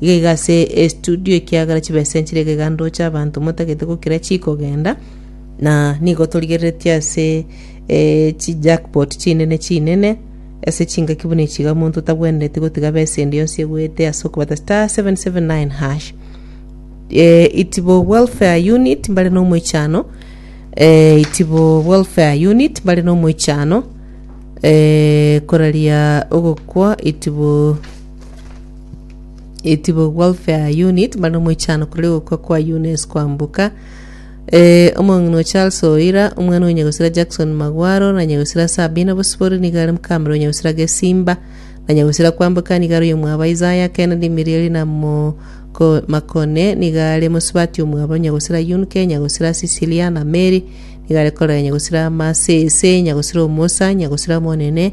Gega ase estudio ekiagera chibesa enchera ekeganto oche abanto motagete gokira chikogenda na nigo torigereretie ase eh, chi jackpot chinene chinene ase chingaki buna echiga omonto otagwenereti gotiga besa ende yonsi egwete ase okobata star 779 hash eh, itibo welfare unit mbare nomoichano eh, itibo welfare unit mbare nomoichano eh, koraria ogokwa itibo Itibu Welfare Unit bande omoichano korere gokwa kwa Eunice Kwambuka eh, omong'ina o Charles Oira omwana o Nyagosira Jackson Magwaro na Nyagosira Sabina Bosibori nigo are mokamera o Nyagosira Gesimba na Nyagosira Kwambuka nigo are omwabo Isaya Kennedy Mirieli na Moko Makone nigo are mosubati omwabo Nyagosira Yunke Nyagosira Cecilia na Mary nigo are korera Nyagosira Masese Nyagosira Omosa Nyagosira Omonene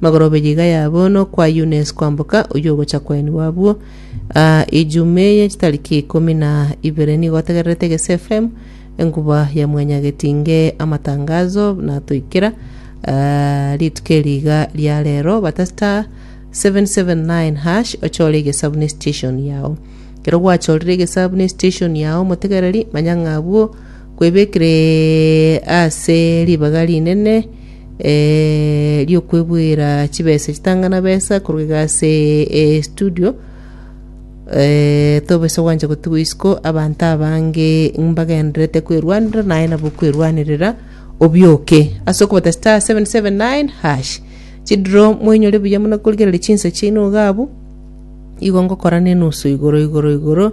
Magorobe yiga yabo nokwa Yunes kwamboka oyio ogocha kwaini wabwo. Aa Ijume ye chitariki ikomi na ibere nigo otegererete Gese FM enkuba ya mwenya getinge amatangazo natoikera aa rituko eri iga ria rero bata star 779 hash ochore egesabu ne station yao. Kero gwachorire egesabu ne station yao motegereri manya ng'a abwo kwebekire ase ribaga rinene eh, ri'okwebuera chibesa chitang'ana besa korwa iga ase eh, studio eh, tobesa gwancha gotigwa isiko abanto abange mbagenderete kwerwanera naye nabo kwerwanerera obioke ase okobata star 779 hash chidro mwenyore buya muna korigereria chinsa chiaino iga abu igo ngokora nenusu igoro igoro igoro